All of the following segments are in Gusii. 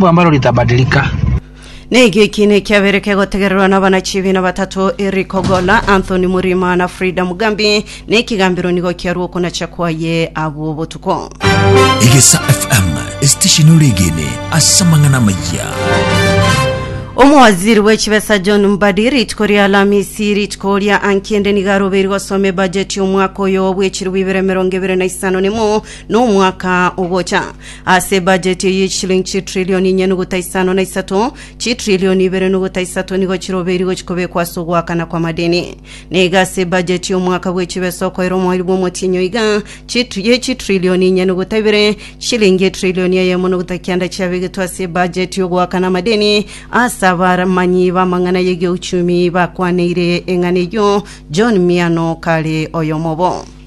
Mungu ambalo litabadilika. Na ekio ekiina ekiabere kegotegererwa n'abanachibiina batato Eric Ogolla, Anthony Murima na Frida Mugambi, na ekigambero nigo kiarue okonacha kwaye abwo botuko. Egesa FM esitesheni oregene ase amang'ana amaya. Omowaziri bw'echibesa John Mbadi rituko ria Alamisi rituko ria ankende nigo arobeiri gosoma ebajeti y'omwaka oyo bw'echirwa ibere emerongo ebere na isano nemo n'omwaka ogocha. Ase ebajeti eye chishilingi chitrilioni inye nogota isano na isato, chitrilioni ibere nogota isato nigo chirobeiri gochia kobekwa ase ogoakana kw'amadeni. Na iga ase ebajeti y'omwaka bwe chibesa okoira omoerio bw'omotienyi oiga, chitri ye chitrilioni inye nogota ibere, chishilingi etrilioni eyemo nogota kianda chiabegetwe ase ebajeti y'ogoakana amadeni ase abaramanyi b'amang'ana y'egeuchumi bakwaneire eng'ana eyio John Miano kare oyomobo.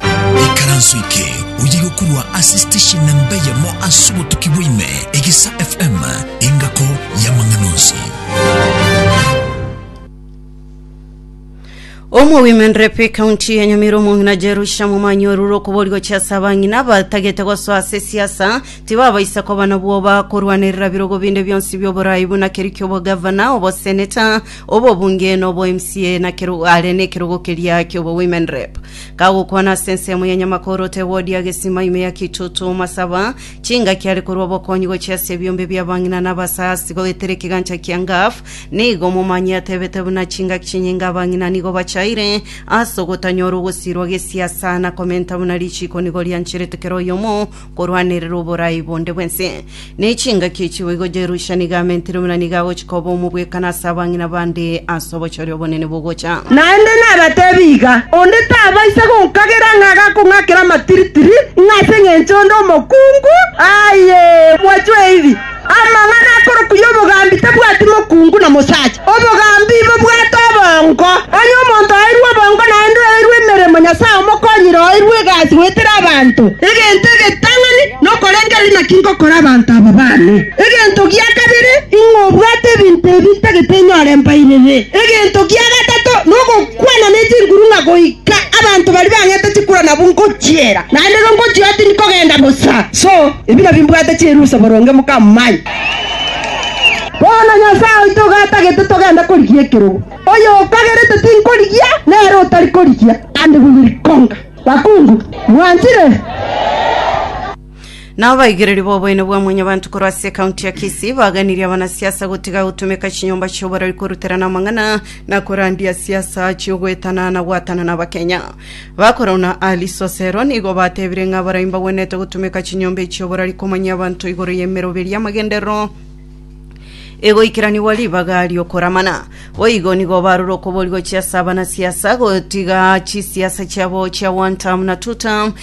Ekaranso eke oye gokorwa ase station namba eyemo ase obotuki bwaime, Egesa FM, engako y'amang'ana onsi. Omowimini rep ekaunti ya Nyamira omong'ina Jerusha Momanyi orure okobori gochia ase abang'ina abatagete gosoa ase siasa tibabaisa koba na bwoba korwanerera birogo binde bionsi bioborai buna keria kiobogavana, oboseneta, obobunge na obo mca na kero are nekerogo keria kiobowimini rep. Kagokwana ase ensemo ya nyamakoro Tewodi agesima ime ya Kitutu omasaba, chingaki are korwa obokonyi gochia ase ebiombe bi'abang'ina na abasaasi goetera ekegancha kia Ngaf, nigo omomanyie atebete buna chingaki chinyinga abang'ina nigo bachaire ase ogotanyora ogosirwa gesiasa na komenta buna richiiko nigo riancherete kera oyomo korwanerera oborai bonde bw'ense, na echingaki echibo igo Jerusha nigo amentire buna nigo agochia koba omobwekano ase abang'ina bande ase obochori obonene bogocha. Naende nabateebie iga, onde tabaisa gonkagera ng'a agakong'akera amatiritiri, ng'a ase engencho onde omokungu, aye, mwachwe eibi. Amang'ana akorokwa y'obogambi tabwati mokungu na mosacha. Obogambi bobwate obongo. Onye omonto oeirwe obongo naende oeirwe emeremo, Nyasae omokonyire oeirwe egasi goetera abanto. Egento egetang'ani nokorengereria naki ngokora abanto aba baane. Egento gia kabere, ing'o obwate ebinto ebi ntagete nyore mbairere. Egento gia gatato nogokwana ne chinguru ng'a goika abanto baria bang'ete chikura nabo ngochiera. Naende igo ngochia tindi kogenda bosa. Ebina bimbwate chirusa boronge mokamanya. Bono Nyasae oito igo atagete togende korigia ekerogo. Oyokagerete tinkorigia, nere otari korigia, and we will conquer. Bakungu, mwanchire? Nao abaigereria b'oboene bwa Mwanyabanto korwa ase ekaunti ya Kisii baganirie abanasiasa gotiga gotumeka chinyomba chi'oborori koruterana amang'ana na korandia siasa chi'ogoetana na goatana n'Abakenya. Bakoro na Alisosero nigo batebire ng'a baria mbagwenerete gotumeka chinyomba echi oborari komanyia abanto igoro y'emeroberi y'amagenderero egoikeranigwa ribaga ri'okoramana. Boigo nigo barure okoboria gochia ase abanasiasa, gotiga chisiasa chiabo chia one term na two term,